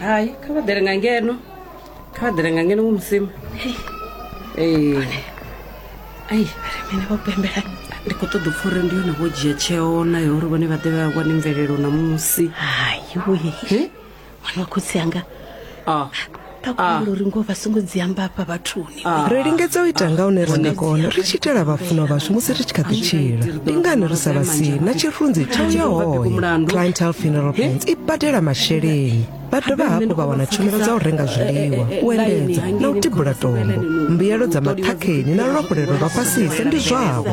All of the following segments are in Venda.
hai kha vha ḓele nga ngeno kha vha ḓele nga ngeno ngo musima ee ai mene vho pembela ndi khou ṱoḓa upfa uri ndi yone vho dzhia tsheo nayo uri vhone vha ḓe vha wane mvelelo na musi hayiwe ṅwana wa khotsi anga a takulo uri ngoho vha songo dzi amba afha vhathuni ah. ri lingedza u ita nga une ra nga kona ri tshi itela vhafunwa vhashu musi ri tshi kha ḓi tshila ndi ngani ri sa vha si na tshirunzi tsha u ya hoyo clientel funeral plans i badela masheleni vha dovha hafhu vha wana tshumelo dza u renga zwiḽiwa u endedza na u tibula tombo mbuyelo dza maṱhakheni na luafhulelo lwa fhasisa ndi zwavho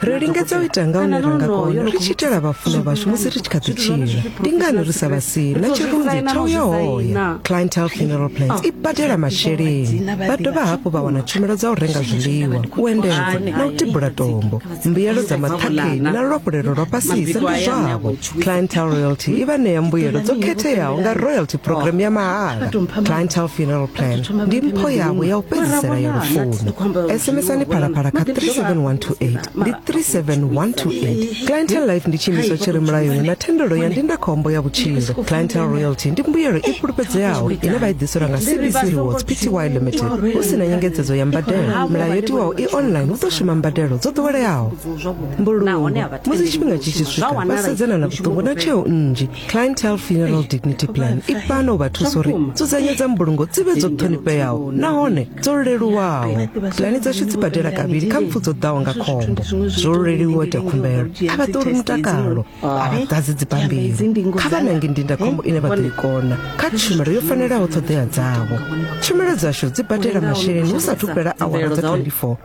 ri lingedza u ita nga hune ra nga kona ri tshi itela vhafunwa vhashu musi ri tshi kha ḓi tshila ndi ngani ri sa vha si na tshirunzi tsha u ya hoya clientel funeral plans i badela masheleni vha dovha hafhu vha wana tshumelo dza u renga zwiḽiwa u endedza na u tibula tombo mbuyelo dza maṱhakheni na luafhulelo lwa fhasisa ndi zwavho clientele royalty i vha ṋea mbuyelo dzo khetheaho nga royalty program ya mahala clientele funeral plan ndi mpho yavho ya u fhedzisela ya lufuno sms-ani phalaphala kha 37128 ndi 37128 clientele life ndi tshiimiswa tshi re mulayoni na thendelo ya ndindakhombo ya vhutshilo clientele royalty ndi mbuyelo i fhulufhedzeaho ine vha i ḓiselwa nga cbc rewards pty limited hu si na nyengedzedzo ya mbadelo mulayo yo tiwaho i online hu ḓo shuma mbadelo dzo ḓoweleaho mbulungo musi tshifhinga tshi tshi swika vha sedzana na vhuṱungu na tsheo nnzhi clientele funeral dignity plan i fana u vha thusa uri dzudzanyo dza mbulungo dzi vhe dzo ṱhonifheaho nahone dzo leluwaho pulani dzashu dzi badela kavhili kha mpfu dzo ḓaho nga khombo zwo leluwa ita khumbelo a vha ṱoli mutakalo a vha ḓadzi dzibammbiri kha vha nange ndindakhombo ine vha ḓo i kona kha tshumelo yo fanelaho ṱhoḓea dzavho tshumelo dzashu dzi badela masheleni hu sa thu fhela awara dza 24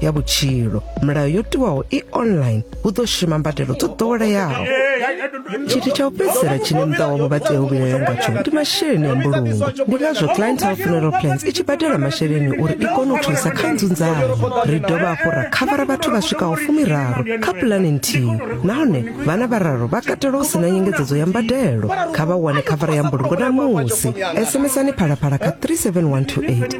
ya vhutshilo milayo yo tiwaho i online hu ḓo shuma mbadelo dzo ḓoweleaho tshithu tsha u fhedzisela tshine muṱa wavho vha tea u vhilela ngatsho ndi masheleni a mbulungo ndi ngazwo clientele funeral plans i tshi badela masheleni uri i kone u thusa kha nzunzano ri dovha hafhu ra khavara vhathu vha swikaho fumiraru kha pulani nthihi nahone vhana vhararu vha katela u sina nyengedzedzo ya mbadelo kha vha wane khavara ya mbulungo na musi sms ani phalaphala kha 37128